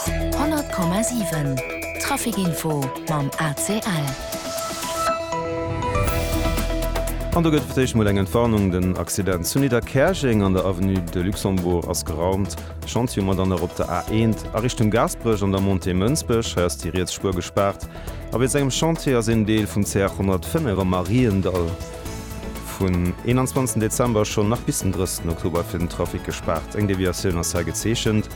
100,7 Trafic Info mam ACL. An do gëtt fir d'éischt mol eng Entwarnung, Den Accident zu Nidderkäerjeng an der Avenue de Luxembourg ass geraumt. Chantier um Madanner op der A1 a Richtung Gaasperech an der Montée Mënsbech. Hei ass déi riets Spuer gespaart a wéinst engem Chantier ass een Deel vum CR 105 am Mariendall. Vun 21 Dezember schonn nach bis den 30 Oktober ass fir den Trafic gespaart. Eng Deviatioun ass hei gezeechent.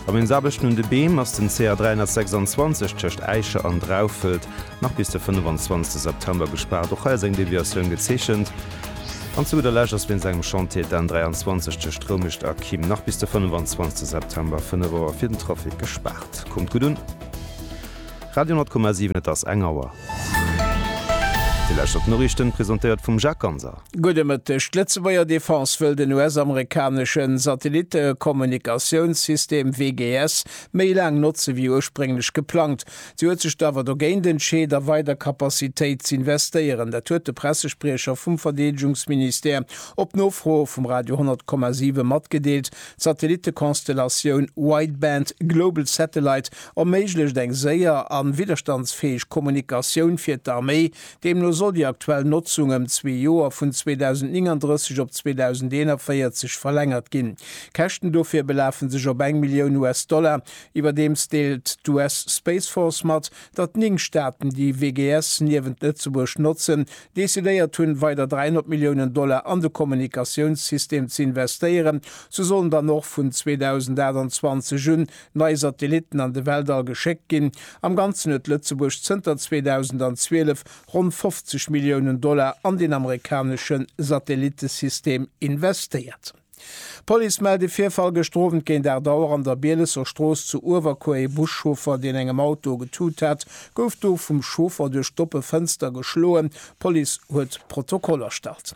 Am Eensaarbechten un de Beem ass den CA 326 tëscht Äische an Draufelt nach bis de 25 September gespaart. Och hei ass eng Deviatioun gezeechent. An zu gudder Lescht ass wéinst engem Chantier d'N 23 tëscht Roumicht a Kim nach bis de 25 September, 5 Auer, fir den Trafic gespaart. Kommt gutt un! Radio 10,7 Et ass eng Auer. Déi lescht op d'Noriichten, presentéiert vum Jacques Ganser. Gudde Mëtteg. D'Lëtzebuerger Defense wëll den US-amerikanesche Satellitte-Kommunikatiounssystem WGS méi laang notze wéi ursprénglech geplangt. Si huet sech awer dogéint entscheet, a weider Capacitéit z'investéieren. Dat huet de Pressespriecher vum Verdeedegungsministère op Nofro vum Radio 10,7 matgedeelt. D'Satellitte-Konstellatioun Wideband Global Satellite erméiglecht eng séier a widderstandsfäeg Kommunikatioun fir d'Arméi. Deemno soll déi aktuell Notzung ëm zwee Joer, vun 2039 op 2041, verlängert ginn. D'Käschten dofir belafe sech op eng Millioun US-Dollar. Iwwerdeems deelt d'US Space Force mat, datt néng Staaten déi WGS niewent Lëtzebuerg notzen, decidéiert hunn, weider 300 Milliounen Dollar an de Kommunikatiounssystem ze investéieren. Sou sollen dann och vun 2028 un nei Satellitten an de Weltall geschéckt ginn. Am Ganzen huet Lëtzebuerg zënter 2012 ronn 50 Milliounen Dollar an den amerikanesche Satellittesystem investéiert. D'Police mellt e Virfall gëschter Owend géint 8 Auer an der Bielesser Strooss zu Uewerkuer. Ee Buschauffer, deen engem Auto getut hat, gouf do vum Chauffer duerch d'oppe Fënster geschloen. D'Police huet Protokoll erstallt.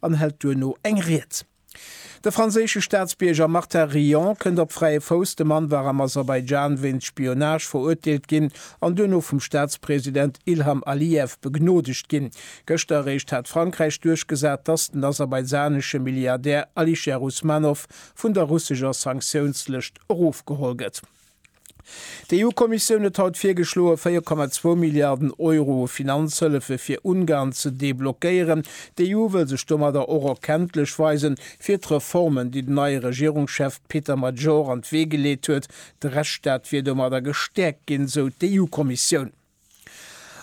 an hält duerno eng Ried. De franséische Staatsbierger Martin Rion kënnt op fräie Fouss. De Mann war am Aserbaidschan wéinst Spionage verurteelt ginn an duerno vum Staatspresident Ilham Aliyev begnodegt ginn. Gëschter eréischt hat Frankräich duerchgesat, dass den aserbaidschanesche Milliardär Alisher Usmanov vun der russescher Sanktiounslëscht erofgeholl gëtt. D'EU-Kommissioun huet haut virgeschloen, 4,2 Milliarden Euro u Finanzhëllefe fir Ungarn ze deblockéieren. D'EU wëll sech domadder och erkenntlech weisen, fir d'Reformen, déi den neie Regierungschef Péter Major an d'Wee geleet huet. De Rechtsstaat wier domadder gestäerkt ginn, sou d'EU-Kommissioun.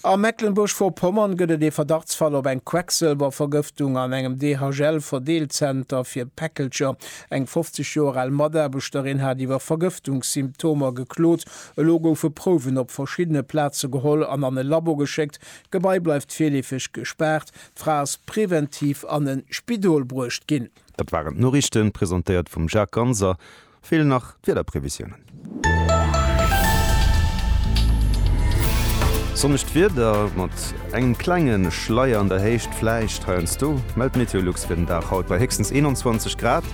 A Mecklenburg-Vorpommern gëtt et ee Verdachtsfall op eng Quecksëlwervergëftung an engem DHL-Verdeelzenter fir Päckelcher. Eng 50 Joer al Mataarbechterin hat iwwer Vergëftungssymptomer geklot. Elo goufe Prouwen op verschiddene Plaze geholl an an e Labo geschéckt. D'Gebai bleift virleefeg gespaart. D'Fra ass preventiv an e Spidol bruecht ginn. Dat waren d'Noriichten, presentéiert vum Jacques Ganser. Feelen nach d'Wiederprevisiounen. Sonnegt Wieder mat engem klenge Schleier an der Héicht vläicht heiansdo, mellt d'Meteolux fir den Dag haut bei héchstens 21 Grad.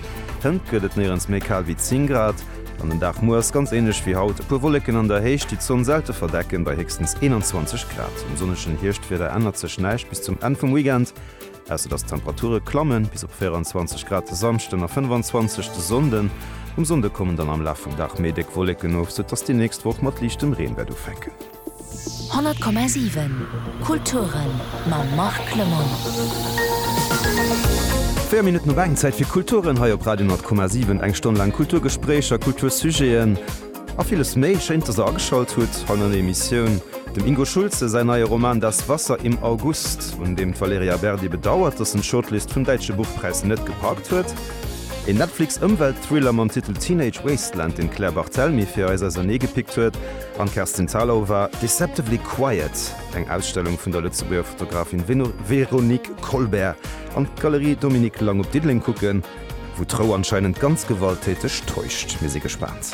Hënt gëtt et néierens méi kal wéi 10 Grad an den Dag muer ass ganz änlech wéi haut, e puer Wolleken an der Héicht, déi d'Sonn selte verdecken, bei héchstens 21 Grad. Um sonnegen Hierschtwieder ännert sech näischt bis zum Enn vum Weekend. Ausser dass d'Temperature klamme bis op 24 Grad de Samschden a 25 de Sonnden. Um Sonnde kommen dann am Laf vum Dag méi déck Wolleken of, sou dass déi nächst Woch mat liichtem Reen wäert ufänken. 100,7 Kulturen mam Marc Clement. 4 Minutten op eng, Zäit fir Kulturen hei op Radio 10,7. Eng Stonn laang Kulturgespréicher, Kultursujeten. A villes méi. Schéin, dass der ageschalt hutt hei no der Emissioun. Dem Ingo Schulze säin neie Roman Das Wasser im August, un deem d'Valerija Berdi bedauert, dass en d'Shortlist vum Däitsche Buchpräis net gepackt huet. Een Netflix-Ëmwelt-Thriller mam Titel Teenage Wasteland, deen d'Claire Barthelmy fir eis ausernee gepickt huet. An d'Kerstin Thalau war Deceptively Quiet, eng Ausstellung vun der Lëtzebuerger Fotografin Véronique Colbert, an d'Galerie Dominique Lang op Diddeleng kucken, wou d'Rou anscheinend ganz gewalttäteg täuscht. Mir si gespaant.